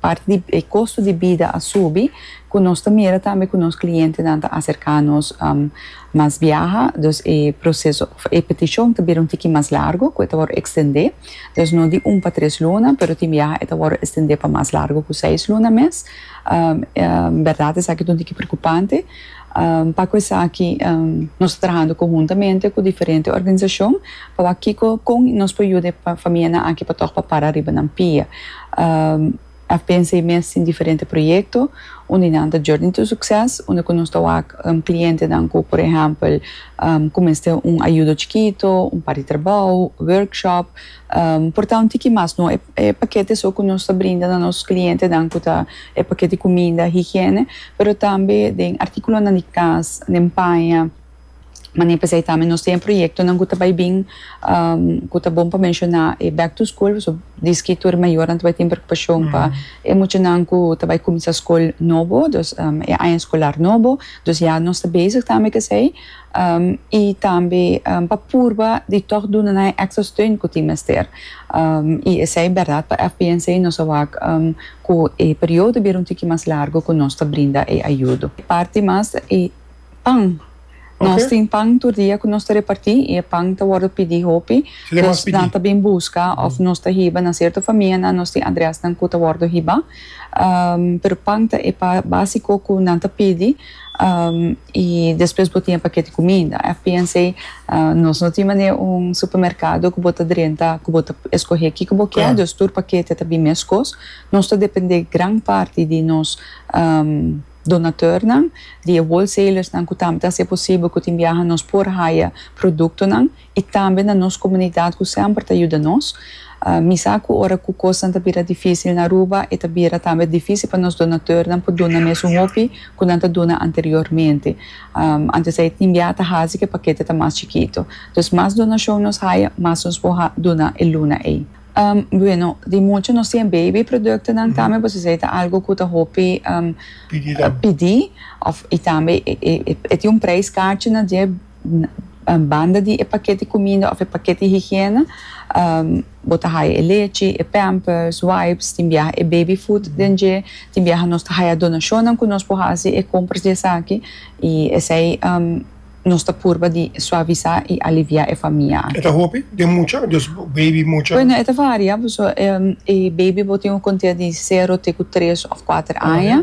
Parti di e kosto di bida a subi ku nos ta mira tambe ku nos klientenan ta aserká nos mas biaha, dus e proseso òf e petishon ta bira un tiki mas largu ku e ta wòrdu ekstendé, dus no di un pa tres luna pero tin biaha e ta wòrdu estendé pa mas largu ku seis luna mes. Bèrdat esaki ta un tiki preokupante. Pa cu esaki nos ta trahando conhuntamente cu diferente organisacion pa wak kico, con y nos por yuda e famianan aki pa toc pa para riba nan pia. A pensa e mes tin diferente proyecto unda nan ta journey to succes, unda cu nos ta wak clientenan cu por ehempel cu mester un ayudo chikito, un par di trabou, workshop, Por ta un tiki mas no e pakete so ku nos ta brinda na nos klientenan ku ta e pakete kuminda, higiene, pero tambe den artikulonan di kas, den paña, manera p'esei tambe nos tin e proyektonan ku ta bai bin ku ta bon pa menshoná e back to school paso diski tur e mayornan ta bai tin preokupashon pa e muchanan ku ta bai kuminsá skol nobo, e aña skolar nobo, dus ya nos ta bezig tambe ku esei. i tambe pa purba di tòg duna nan e èkstra steun ku tin mester. I esei bèrdat pa FPNC nos a wak ku e periodo bira un tiki mas largu ku nos ta brinda e ayudo. Parti mas e pan. Nos tin pan tur dia ku nos ta repartí i e pan ta wòrdu pidí hopi. Dus nan ta bin buska òf nos ta hiba na sierto famianan. Nos tin adrèsnan ku ta wòrdu hibá, pero pan ta e básiko ku nan ta pidi. y despues bo tin e paket di cuminda. FPNC, Nos no tin manera un supermercado cu bo ta drenta cu bo ta escoge kico bo kier, dus tur paketnan ta bin mes cos. Nos ta depende gran parti di nos donateurnan, di e wholesalers nan cu tambe ta haci e posible cu tin biaha nos por haya productonan. i tambe na nos komunidat ku semper ta yuda nos. Mi sa ku ora ku kosnan ta bira difísil na Aruba e ta bira tambe difísil pa nos donatornan por duna mes un hopi ku nan ta duna anteriormente. Antes ei tin bia ta hasi ku e pakete ta mas chikitu. Entonces mas donashon nos haya mas nos por duna e luna ei. Bueno, di mucha nos tin e baby produktonan tambe pues esei ta algu ku ta hopi pidi i tambe e tin un preis karchi na dje. banda di e paket di kuminda òf e paket di higiena, bo ta haya e lechi, e pampers, wipes, tin biaha e baby food den dje, tin biaha nos ta haya donashonnan ku nos por hasi e kompras di esaki i esei nos ta purba di suavisá i aliviá e famia aki. E ta hopi den mucha? Dus baby mucha? Bueno, e ta varia, pasobra e baby bo tin un kontea di sero te ku tres òf kuater aña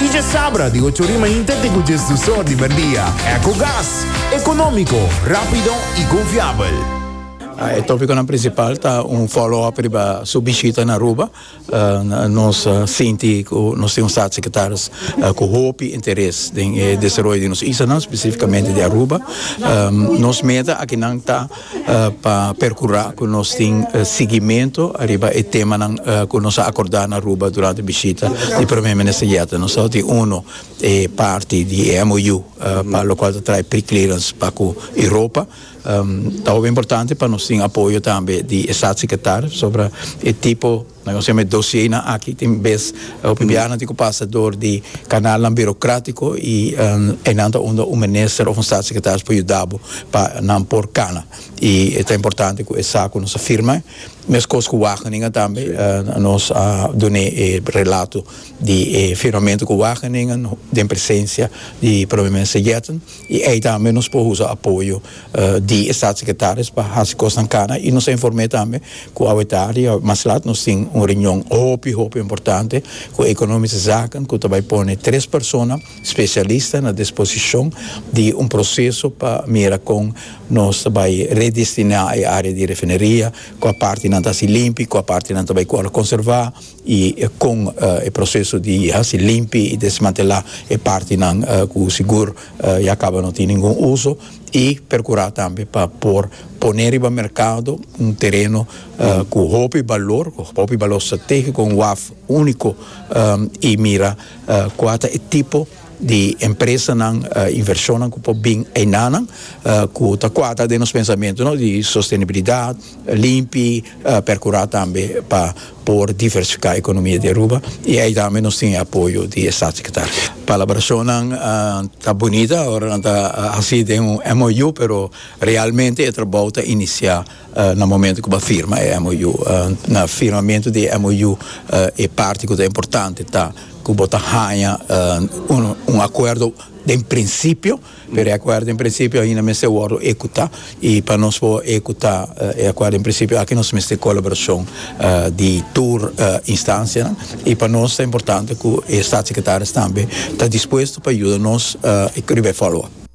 Y dje sabra di ocho rima inte te cu dje sdusor di merdia. Ecogas, economico, rapido y confiabel. E topiconan principal ta un follow-up riba su bishita na Aruba. Nos sinti cu nos tin un Staatssecretaris cu hopi interes den e desaroyo di nos islanan, specificamente di Aruba. Nos meta akinan ta. pa percura cu nos tin siguimento ariba e temanan cu nos a acorda na Aruba durante bishita di Prome Minister Jette. Nos lo tin uno e parti di e MOU pa lo cual ta trae preclearance pa cu Europa. Ta hopi importante pa nos tin apoyo tambe di e Staatssecretaris sobre e tipo Na nos hember dosienan aki tin bes Bolivianan tin cu pasa door di canalnan burocratico y eynan ta unda un minister of un staatssecretaris por yuda bo pa nan por cana y e ta importante cu esa cu nos a firma mescos cu Wageningen tambe nos a dune e relato di e firmamento cu Wageningen den presencia di Prome Minister Jetten. I ei tambe nos por usa apoyo di e Staatssecretaris pa hasi kosnan kana i nos a inform'é tambe ku awe tardi awe mas lat nos tin un reunion hopi hopi importante ku Economische Zaken ku ta bai pone tres persona spesialista na disposishon di un proseso pa mira kon nos ta bai redestiná e área di refineria kua partinan ta hasi limpi kua partinan ta bai kual konservá. y con e proceso di haci limpi y desmantela e partinan cu sigur ya caba no tin ningun uso y percura tambe pa por pone riba mercado un tereno cu hopi balor cu hopi balor strategico un waf unico y mira cua ta e tipo di empresanan, invershonnan ku por bin einanan ku ta kuadra den nos pensamentu no di sostenibilidat, limpi, perkurá tambe pa por diversifiká ekonomia di Aruba i ei tambe nos tin e apoyo di e Statssekretaris. Kolaborashonnan ta bunita, ora nan ta hasi den un MOU pero realmente e trabou ta inisiá. Na momento cu bo a firma e MOU, na firmamento di e MOU e parti cu ta importante ta cu bo ta haña un acuerdo den principio, pero e acuerdo den principio ainda mester wordo ecuta y pa nos por ecuta e acuerdo den principio aki nos mester colaboracion di tur instancianan y pa nos ta importante cu e Statsecretaris tambe ta dispuesto pa yuda nos riba e follow up.